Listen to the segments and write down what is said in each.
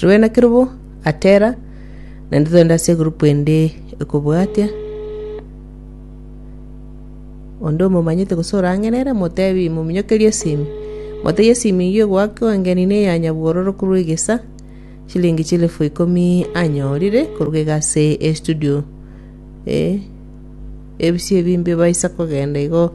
Rwena kerubo atera naende togende ase egroup ende ekobwatia onde omomanyete gose orang'erere motebi mominyokerie esimi motebie esimi eyio egoaka engeni ne ya nyabwororo korwa egesa chilingi chilifu ikomi anyorire koruga iga ase estudio eh ebisi ebimbe baisa kogenda igo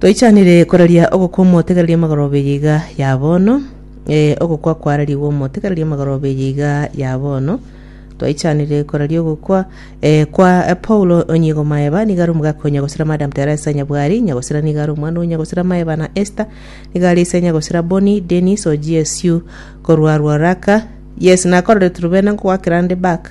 Toichanire koraria ogokwa omotegereria magoroba eye iga ya bono, ee, ogokwa kwararigwe omotegereria magoroba eye iga ya bono. Twaichanire koraria ogokwa eh, kwa eh, Paulo onyigo maeba niga ari omogaka o nyagosira Madam Teresa Nyabwari nyagosira niga ari omwana o nyagosira maeba na Esther niga ari ise nyagosira Boni Dennis o GSU korwa Ruaraka. Yes, nakororete rubena ngoakera nde back.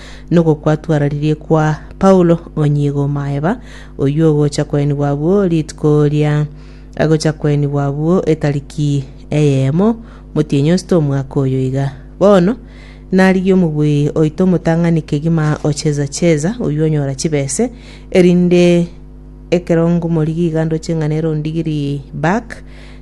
Nokwo kwatwararirie kwa Paulo onyigo o maeba, oyio ogocha kwenigwa abwo rituko ria agocha kwenigwa abwo etariki eyemo motienyi osito omwaka oyo iga. Bono narigie omobui oito omotang'ani kegima o Cheza-Cheza, oyio onyora chibese, erinde ekero ngomorigia iga ndoche ng'a nere ondigirie back,